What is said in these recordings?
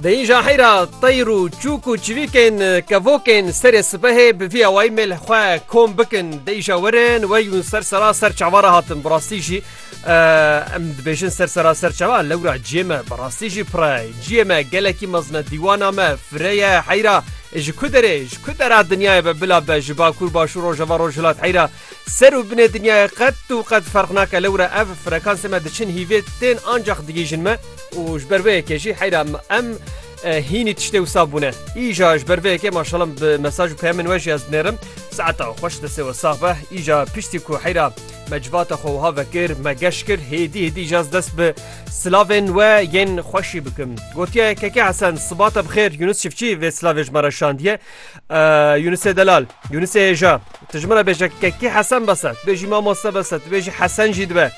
Di îja heyr a teyr û çûk û çivîkên kevokên serê sipehê bi vî awayî mêl xwe kom bikin di îja we re niwe yûn ser sera ser çava re hatin bi rastî jî em dibêjin ser sera ser çava lewra ciyê me bi rastî jî pir e ciyê me gelekî mezin e dîwana me fire ye heyra ji ku derê ji ku dera dinyayê be bila be ji bakur başûr rojava rojhilat heyra Ser û binê dinyayê qet û qet ferq nake lewr e ev frekansê me diçin hîvê tên ancax digihîjin me û ji ber vê yekê jî heyra em hînî tiştê wisa bûne. Îja ji ber vê yekê maşala min bi mesaj û peyamên we jî ez dinêrim. Saeta we xweş destê we sax be. Îja piştî ku heyra me civata xwe wiha vekir me geş kir hêdî hêdî îja ez dest bi silavên we yên xweşî bikim. Gotiya yekekê Hesen sibata bi xêr Yunus Çifçî vê silavê ji me re şandiye. Yunusê delal, Yunusê hêja, tu ji min re bêje kekî Hesen bese, tu bêjî mamoste bese, tu bêjî Hesen jî dibe.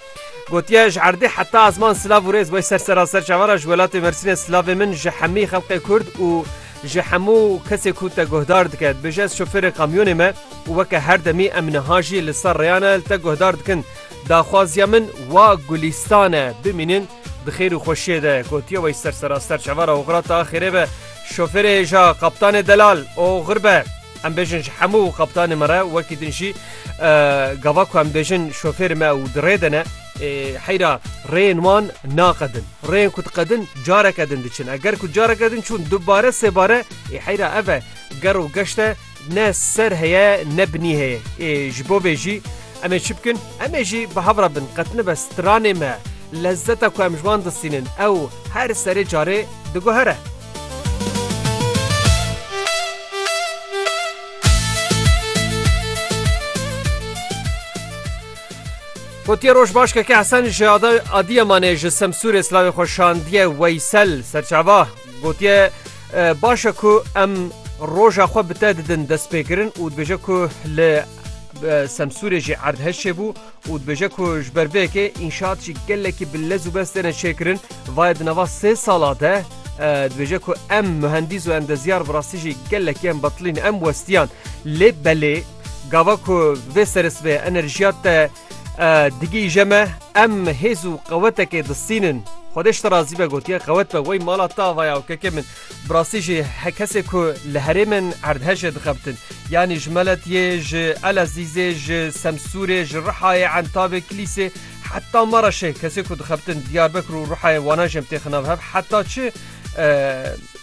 Gotiye ji erdê heta azman silav û rêz wey ser seraser çavara ji welatê Mersînê silavê min ji hemî xelqê Kurd û ji hemû kesê ku te guhdar dike. Dibêje ez şofêrê kamyonê me û weke her demî em niha jî li ser rêyane li te guhdar dikin. Daxwaziya min wa gulîstan e. Bimînin. Di xêr û xweşiyê de gotiye wey ser seraster çavara oxira ta xêrê be, şofêrê hêja, qaptanê delal, oxir be. Em bêjin ji hemû qaptanê me re wekî din jî gava ku em bêjin şofêrê me û di rê de ne. Heyra rêyên wan naqedin. Rêyên ku diqedin careke din diçin. Eger ku careke din çûn dubare sêbare, heyra ev e ger û geşt e. Ne ser heye ne binî heye. Ê ji bo vê jî em ê çi bikin? Em ê jî bi hev re bin. Qet nibe stranê me, lezzeta ku em ji wan distînin ew her serê carê diguhere. Gotiye roj baş keke Hesen ji Adiyamanê ji Semsûrê silavê xwe şandiye Weysel Serçava. Gotiye, Baş e ku em roja xwe bi te didin destpêkirin û dibêje ku li Semsûrê jî erdhej çêbû û dibêje ku ji ber vê yekê înşaat jî gelekî bi lez û bes têne çêkirin. Vaye di nava sê sala de dibêje ku em muhendîs û endezyar bi rastî jî gelekî em betilîn em westiyan. Lê belê gava ku vê serisvê enerjiya te Digihîje me em hêz û qewetekê distînin. Xwedê ji te razî be gotiye qewet be wey mala te ava ya û keke min. Bi rastî jî he kesê ku li herêmên erdhejê dixebitin yanî ji Meletiyê, ji Elezîzê, ji Semsûrê, ji Rihayê, Entabê, Kilîsê heta Mereşê kesê ku dixebitin Diyarbekir û Rihayê wana jî em têxin nav hev heta çi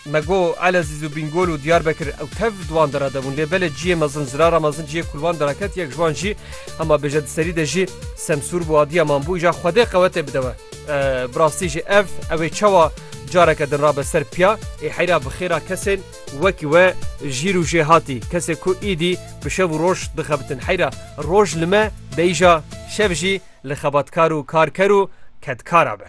Me got Elezîz û Bîngol û Diyarbekir ew tev di wan dera de bûn lê belê ciyê mezin zirara mezin ciyê ku li wan dera ket yek ji wan jî hema bêje di serî de jî semsûr bû adiya man bû îja xwedê qewetê bide we. Bi rastî jî ev ew ê çawa careke din rabe ser piya ê heyra bi xêra kesên wekî we jî rûjê hatî kesê ku îdî bi şev û roj dixebitin heyra roj li me be îja şev jî li xebatkar û karker û kedkara be.